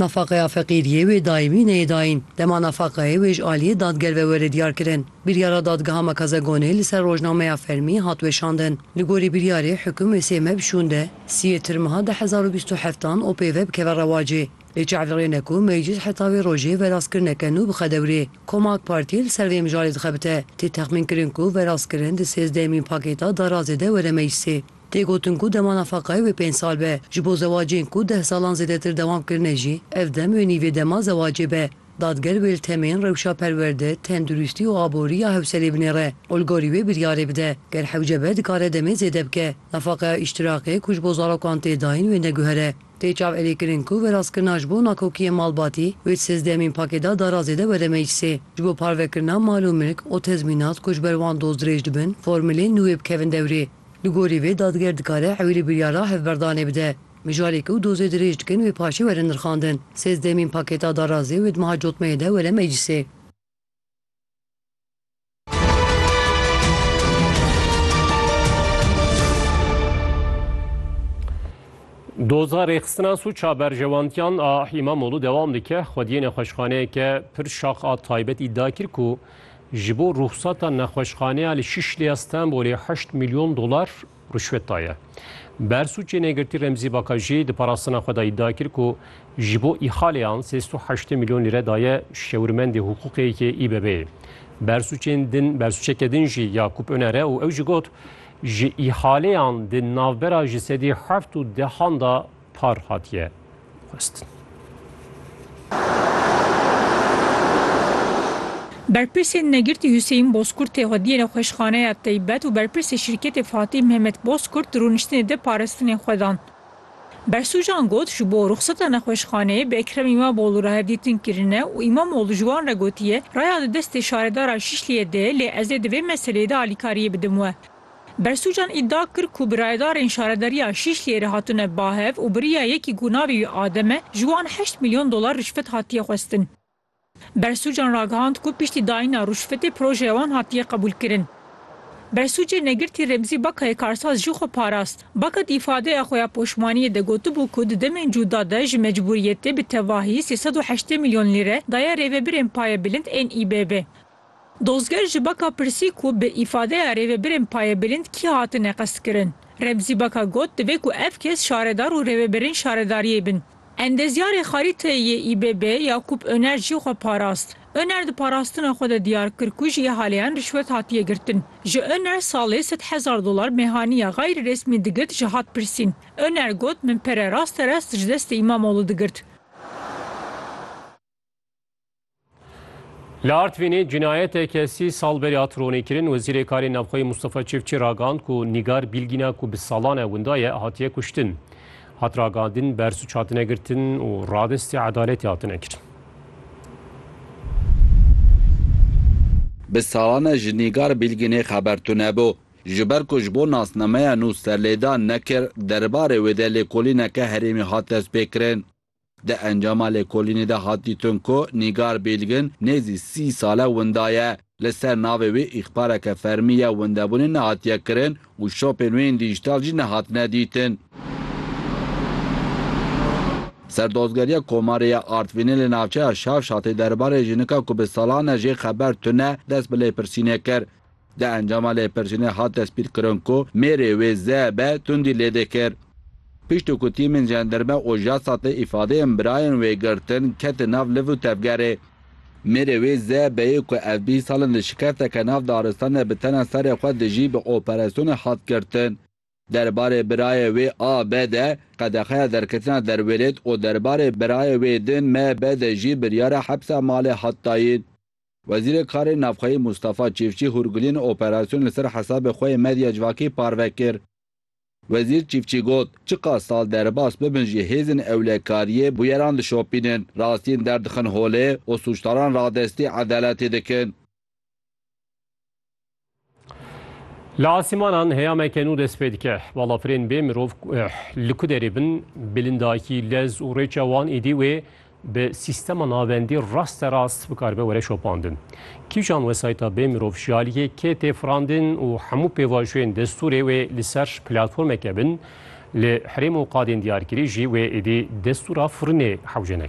Nafaqeya feqîriyê wê daîmî neyê dayîn. Dema nafaqeyê wê ji aliyê dadger ve were diyarkirin, biryara Dadgeha Makazegonê li ser rojnameya fermî hat weşandin. Li gorî biryarê hukum wê sê meh bi şûnde sî yê tirmha du hezar û bîst û heft an OP ve bikeve rewacê. Lê çav li rê ne ku Meclîs heta vê rojê verastkirineke nû bixe dewrê. Koma AK Partî li ser vê mijarê dixebite. Tê texmînkirin ku verastkirin di sêzdehemîn pakêta darazê de were meclisê. Tê gotin ku dema nafaqayê wê pênc sal be, ji bo zewacên ku deh salan zêdetir dewam kirine jî ev dem wê nîvê dema zewacê be. Dadger wê li temên rewşa perwerde, tenduristî û aborî ya hewselê binêre û li gorî wê biryarê bide. Ger hewce be dikare demê zêde bike. Nafaqeya îştiraqê ku ji bo zarokan tê dayîn wê neguhere. Tê çavelêkirin ku verastkirina ji bo nakokiyên malbatî wê di sêzdehemîn pakêda darazê de were meclisê. Ji bo parvekirina mal û milk û tezmînat ku ji ber wan doz dirêj dibin formuleyên nû wê bikevin dewrê. Li gorî vê dadger dikare ewîlî biryara hevberdanê bide. Mijarê ku dozê dirêj dikin wê paşê were nirxandin. Sêzdehemîn pakêta darazê wê di meha cotmeyê de were meclîsê. Doza rêxistina sûca berjewantiyan a Îmamoglû dewam dike. Xwediyê nexweşxaneyeke pir şax a taybet îdia kir ku Ji bo ruhsata nexweşxaneya li Şişlê ya Stenbolê heşt milyon dolar rişwet daye. Bersûcê Negirtî Remzî Baka jî di parastina xwe de îdia kir ku ji bo îhaleyan sê sed û heştê milyon lîre daye şewirmendê hiqûqê yê İBB'ê. Bersûcên din bersûceke din jî ya Kup Öner e û ew jî got, Ji îhaleyan di navbera ji sedî heft û dehan de par hatiye xwestin. Berpirsên Negirtî Huseyîn Bozkurt tê xwediyê nexweşxaneya teybet û berpirsê şîrketê Fatîh Mehmet Bozkurt di rûniştinê de parastinên xwe dan. Bersûcan got, Ji bo ruxseta nexweşxaneyê bi Ekrem Îmamoglû re hevdîtin kirine û Îmamoglû ji wan re gotiye, raya di destê şaredara Şîşliyê de ye lê ez ê di vê meseleyê de alîkariyê bidim we. Bersûcan îdia kir ku bi rayedarên şaredariya Şîşliyê re hatine bahev û biriya yekî ku navê wî Adem e, ji wan heşt milyon dolar rîşvet hatiye xwestin. Bersûcan ragihand ku piştî dayîna rûşvetê projeya wan hatiye qebûlkirin. Bersûcê Negirtî Remzî Bakayê karsaz jî xwe parast. Baka di îfadeya xwe ya poşmaniyê de gotibû ku di demên cûda de ji mecbûriyetê bi tevahî sê sed û heştê milyon lîre daye rêvebirên payebilind ên İBB. Dozger ji Baka pirsî ku bi îfadeya rêvebirên payebîlind kî hatine qestkirin. Remzî Baka got divê ku ev kes şaredar û rêvebirên şaredariyê bin. Endezyarê Xarîteyê yê ÝBB Yakûp Oner jî xwe parast. Oner di parastina xwe de diyar kir ku ji îhaleyan rîşwet hatiye girtin. Ji Oner salê sed hezar dolar mêhaniya gayrîresmî digirt ji hat pirsîn. Oner got min pere rasterast ji destê Îmamoğlu digirt. Li Artvînê cinayeteke sî sal berî hat ronîkirin Wezîrê Karên Navxweyî Mustafa Çiftçî ragihand ku Nîgar Bîlgîna ku bi salan e winda ye hatiye kuştin. Hat ragihandin bersuç hatine girtin û radestê edaletê hatine kirin. Bi salan e ji Nîgar Bîlgînê xeber tunebû. Ji ber ku ji bo nasnameya nû serlêdan nekir, derbarê wê de lêkolîneke herêmî hat destpêkirin. Di encama lêkolînê de hat dîtin ku Nîgar Bêlgin nêzî sî sal e winda ye. Li ser navê wê îxbareke fermî ya windebûnê nehatiye kirin û şopên wê yên dîjîtal jî nehatine dîtin. Serdozgeriya Komarê ya Artvînê li navçeya Şavşatê derbarê jinika ku bi salan e jê xeber tune dest bi lêpirsînê kir. Di encama lêpirsînê hat destpîrkirin ku mêrê wê ZB tundî lêde kir. Pişt ku tîmên jenderme û JASAT'ê îfadeyên birayên wê girtin, ketin nav liv û tevgerê. Mêrê wê ZB'ê ku ev bîst sal in di şikesteke nav daristan de bi tena serê xwe dijî bi operasyonê hat girtin. Derbarê birayê wê AB de qedexeya derketina derwêlêt û derbarê birayê wê din MB de jî biryara hepsa malê hat dayîn. Wezîrê Karên Navxweyî Mûstafa Çîfçî hûrgiliyên operasyonê li ser hesabê xwe yê medya civakî parve kir. Wezîr Çîfçî got, Çiqas sal derbas bibin jî hêzên ewlekariyê bûyeran dişopînin, rastiyên derdixin holê û sûcdaran radestî edaletê dikin. Li asîmanan heyameke nû dest pê dike. Balafirên bê mirov eh, li ku derê bin, bilindakî, lez û rêça wan êdî wê bi sîstema navendî raste rast bikarbe were şopandin. Kîjan wesayîta bê mirov ji aliyê kê tê firandin û hemû pêvajoyên destûrê wê li ser platformeke bin li herêm û qadên diyarkirî jî wê êdî destûra firinê hewce neke.